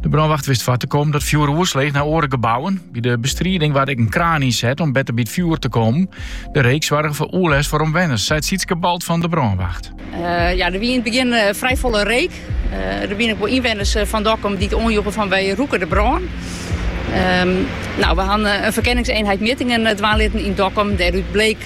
De brânwacht wist foar te kommen dat fjoer oersleech nei oare gebouwen. By de bestriding waard ek in kraan ynset om better by it fjoer te kommen. De reek soarge foar oerlêst foar omwenners, seit Sietske Balt fan de brânwacht. Eh, ja, der wie yn it begjin eh, frij folle reek. Eh, der binne ek wol ynwenners fan Dokkum dy't it oanjoegen fan wy rûke de brân. Ehm, nou, we hawwe in ferkenningsienheid mjittingen dwaan litten yn Dokkum. Dêrút bliek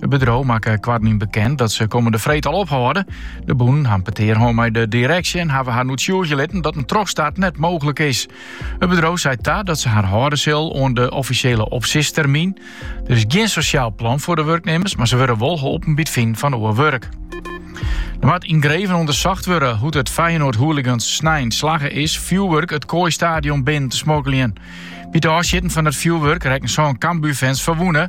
It bedriuw makke koartnyn bekend dat se kommende freed al ophâlde. De bûnen ha in petear hân mei de direksje en hawwe harren oertsjûgje litten dat in trochstart net mooglik is. It bedriuw sei ta dat se har hâlde sil oan de offisjele opsistermyn. Der is gjin sosjaal plan foar de wurknimmers, mar se wurde wol holpen by it finen fan oar wurk. Der moat yngreven ûndersocht wurde hoe't it Feyenoord-hooligans snein slagge is fjoerwurk it Kooi-stadion binnen te smokkeljen. By it ôfsjitten fan it fjoerwurk rekken sân Cambuur-fans ferwûne.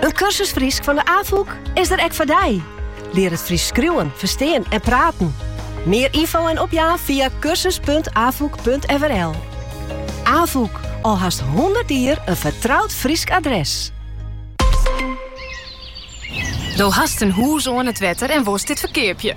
In kursus Frysk fan de Afûk is der ek foar dy. Lear it Frysk skriuwen, ferstean en praten. Mear info en opjaan fia kursus.afûk.frl. Afûk, al hast 100 jier in fertroud Frysk adres. Do hast in hûs oan it wetter en wolst dit ferkeapje.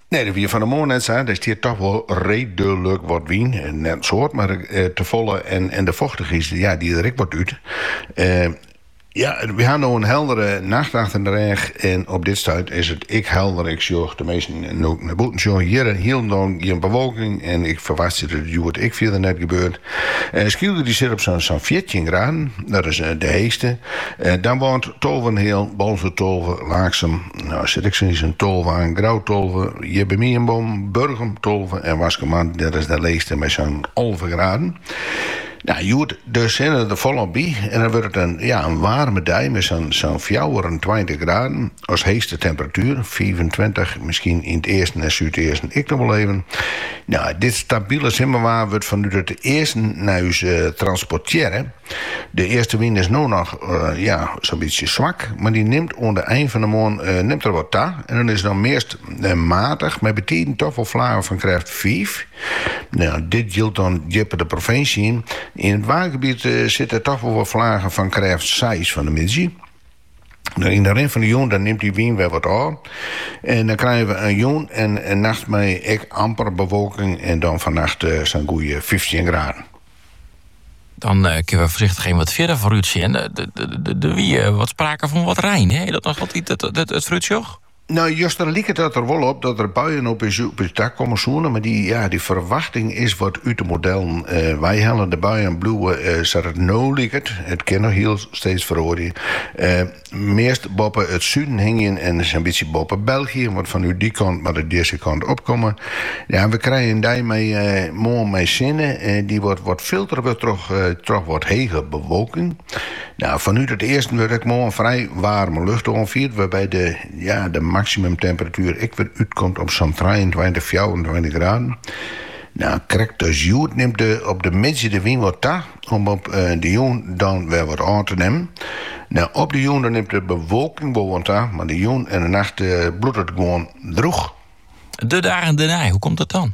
Nee, dat wie fan 'e moarn net sa. Der stie hjir toch wol reedlik wat wyn. Net in soad, mar tefolle. En, en de fochtichheid ja, dy't der ek wat út. Ja, we ha no in heldere nacht achter de rêch en op dit stuit is it ek helder. Ik sjoch as ik sa nei bûten sjoch hjir hielendal gjin bewolking en ik ferwachtsje dat it hjoed ek fierder net gebeurt. En Skylge dy sit op sa'n fjirtjin graden, dat is de heechste. Damwâld tolvenheal, Boalsert tolve, Laaksum jout ek sa'n sa'n tolve aan, Grou tolve, hjir by my yn Noardburgum tolve en Waskemar, dat is de leechste mei sa'n alve graden. Nou, hjoed, de sinne der folop by en dan wurdt it in waarme dei mei sa'n fjouwerentweintich graden. As heechste temperatuer, fiifentweintich, miskien yn it easten en súdeasten ek noch wol even. Nou, dit stabile simmerwaar wurdt fanút it easten nei ús eh, transportearre. De eastewyn is no noch eh, ja, sa'n bytsje swak, mar dy nimt oan de ein fan de moarn eh, nimt er wat ta en dan is dan meast eh, matich, mei betiden toch wol flagen fan krêft fiif. Nou, dit jildt dan djipper de provinsje yn. Yn it waadgebiet eh, sitte toch wol wat flagen fan krêft seis fan 'e middei. Nou, yn de rin fan de jûn dan nimt dy wyn wer wat ôf. En dan krijen we in jûn en in nacht mei ek amper bewolking en dan fannacht eh, sa'n goede fyftjin graden. Dan eh, kinne we foarsichtich even wat fierder foarút sjen. Eh, de, de, de, der wie eh, wat sprake fan wat rein. Hè? Dat noch altyd it, it, it, it No, juster liket it der wol op dat der buien op ús dak komme soene, mar dy, ja, dy ferwachting is wat út de modellen wei helle. De buien bliuwe sa't it no liket, it kin noch hiel steeds feroarje, meast boppe it suden hingjen en sa'n bytsje boppe België, want fanút dy kant moat it dizze kant op komme. Ja, we krije in dei mei moarn mei sinne, dy't wat filtere wurdt troch wat hege bewolking. Nou, fanút it easten wurdt ek moarn frij waarme lucht oanfierd, wêrby't de ja, de maksimumtemperatuer ek wer útkomt op sa'n trijeentweintich, fjouwerentweintich graden. Nou, krekt as hjoed nimt de op de middei de wyn wat ta, om op de jûn dan wer wat ôf te nimmen. Nou, op de jûn dan nimt de bewolking wol wat ta, mar de jûn en de nacht bliuwt it gewoan droech. De dagen dernei, hoe komt dat dan?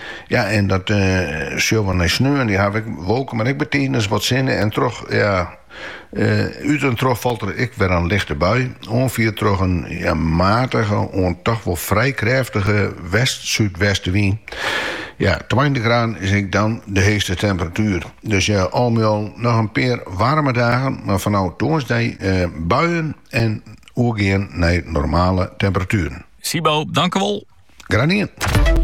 Ja, en dat uh, sjogge we nei sneon, dan ha we ek wolken, mar ek bytiden wat sinne en troch, ja, uh, út en troch falt der ek wer in lichte bui, oanfierd troch in ja, matige, oant toch wol frij krêftige west-súdwestewyn. Ja, 20 graden is ek dan de heechste temperatuer. Dus ja, al mei al noch in pear waarme dagen, mar fanôf tongersdei uh, buien en oergean nei normale temperatueren. Sibo, dankewol. Graach dien.